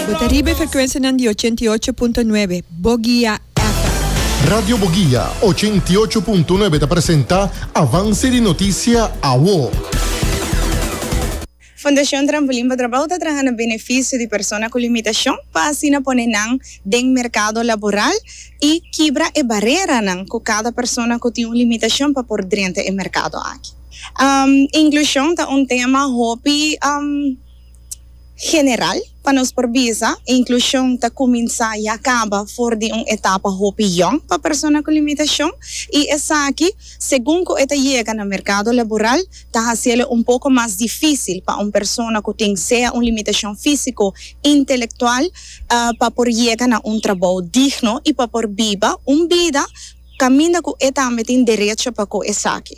Bo ta riba e frekwensianan di ochenta i ocho punto nuebe Bogia FM. Radio Bogia ochenta i ocho punto nuebe ta presenta Avance di Noticia Awo. Fundacion Trampolin pa Trabao ta traha na beneficio di persona cu limitacion pa asina pone nan den mercado laboral y kibra e bareranan cu cada persona cu tin un limitacion pa por drenta e mercado aki. Inclusion ta un tema hopi. general pa nos por bisa e inklushon ta kuminsá ya kaba for di un etapa hopi yòn pa persona ku limitashon i esaki segun ku e ta yega na merkado laboral ta hasiélo un poko mas difísil pa un persona ku tin sea un limitashon físiko intelektual pa por yega na un trabou digno i pa por biba un bida Caminda cu e tambe tin derecho pa cu esaki.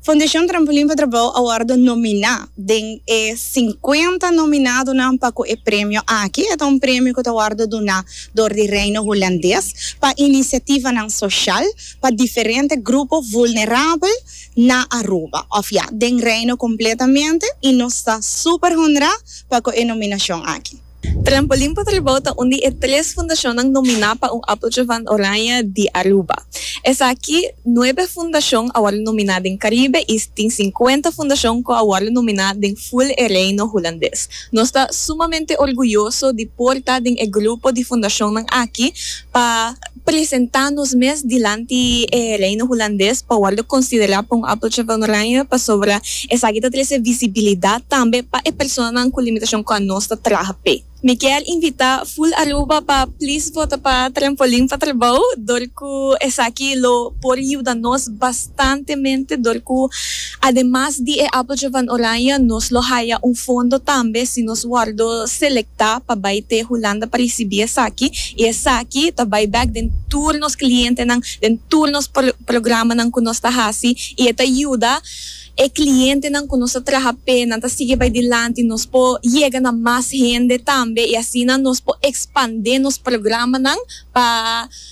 Fundacion Trampolin pa Trabao a wordo nomina den e cincuenta nominadonan pa cu e premio aki. E ta un premio cu ta wordo duna door di Reino Hulandes pa iniciativanan social pa diferente grupo vulnerabel na Aruba, of ya, den Reino completamente y nos ta super honra pa cu e nominacion aki. Trampolin pa Tribou ta un di e tres fundashonnan nominá pa un Appeltje van Oranje di Aruba. Esaki nuebe fundashon a wòrdu nominá den Karibe i tin sinkuenta fundashon ku a wòrdu nominá den ful e Reino Hulandes. Nos ta sumamente orguyoso di por ta den e grupo di fundashonnan aki pa. presentá nos mes dilanti e Reino Hulandes pa wòrdu konsiderá pa un Appeltje van Oranje pasobra esaki ta trese visibilidat tambe pa e personanan ku limitashon ku anos ta traha p'e. Mi kier invitá Full Aruba pa plis vota pa Trampolin pa Trabou dor ku esaki lo por yuda nos bastantemente dor ku Ademas di e Apeltje van Oranje nos lo haya un fondo tambe si nos wòrdu selektá pa bai te Hulanda pa risibí esaki i esaki ta bai bèk den tur nos klientenan, den tur nos programanan ku nos ta hasi i e ta yuda e klientenan ku nos ta traha p'e nan ta sigui bai dilanti, nos por yega na mas hende tambe i asina nos por ekspandé nos programanan pa.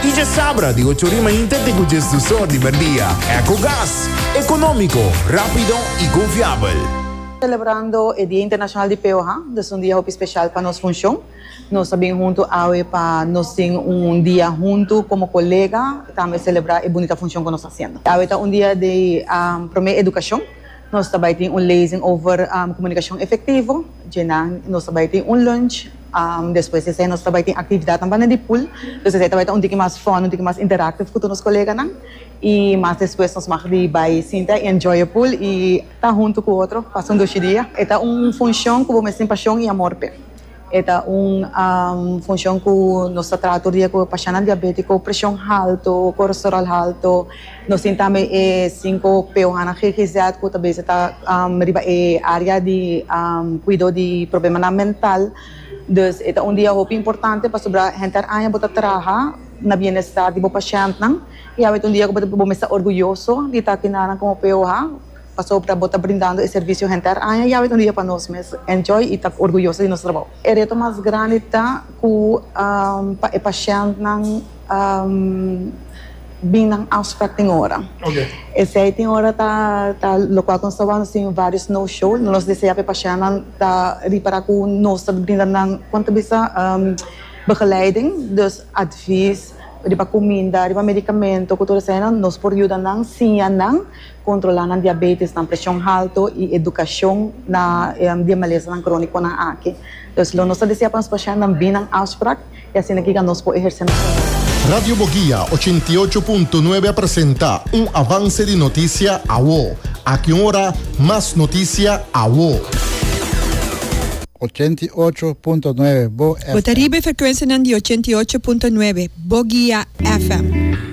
Y dje sabra di ocho ori mainta te cu djes dos or di merdia. Ecogas, economico, rapido y confiabel. Celebrando e Dia Internacional di Peoha, nos un dia hopi special pa nos funcion. Nos a bin hunto awe pa nos tin un dia hunto como colega y tambe celebra e bunita funcion cu nos ta haciendo. Awe ta un dia di promo educacion. Nos ta bai tin un lezing over komunikashon efektivo, dje nan nos ta bai tin un lunch, despues di esei nos ta bai tin aktividatnan banda di pool, dus esei ta bai ta un tiki mas fòn, un tiki mas interaktiv ku tur nos koleganan i mas despues nos mag di bai sinta i enjoy e pool i ta huntu ku otro pasa un dushi dia. E ta un funshon ku bo mester tin pashon i amor p'e. E ta un funshon ku nos ta traha tur dia ku pashanan diabétiko, preshon haltu, kolesteròl haltu. Nos tin tambe e sinku p o hana GGZ ku ta bese ta riba e área di kuido di problemanan mental. Dus e ta un dia hopi importante pasobra henter aña bo ta traha na bienestar di bo pashèntnan i awor e ta un dia ku bo mester ta orguyoso di ta kindanan komo p o ha. pasobra bo ta brindando e servisio henter aña yawe un dia pa nos mes enjoy y ta orguyoso di nos trabou. E reto mas grandi ta cu pa e pashentnan bin nan afspraak tin ora. Esey tin ora ta locual cu nos ta wak sin varios no show. Nos desea pa e pashentnan ta ripara cu nos ta brinda nan con ta bisa begeleiding, dus advies riba cuminda, riba medicamento cu tur eseynan nos por yuda nan, siña nan. kontrolá nan diabétis, nan preshon haltu i edukashon na di e malesanan krónikonan aki. Entonces, lo nos ta desea pa nos pashennan bini na un afsprak i asina kiga nos por ehersé nos funshon. Radio Boguia ochenta i ocho punto nuebe a presenta un avanse di notisia awo. Aki un ora mas notisia awo. Ochenta i ocho punto nuebe, Bo FM. Bo ta riba e frekuensianan di ochenta i ocho punto nuebe, Boguia FM.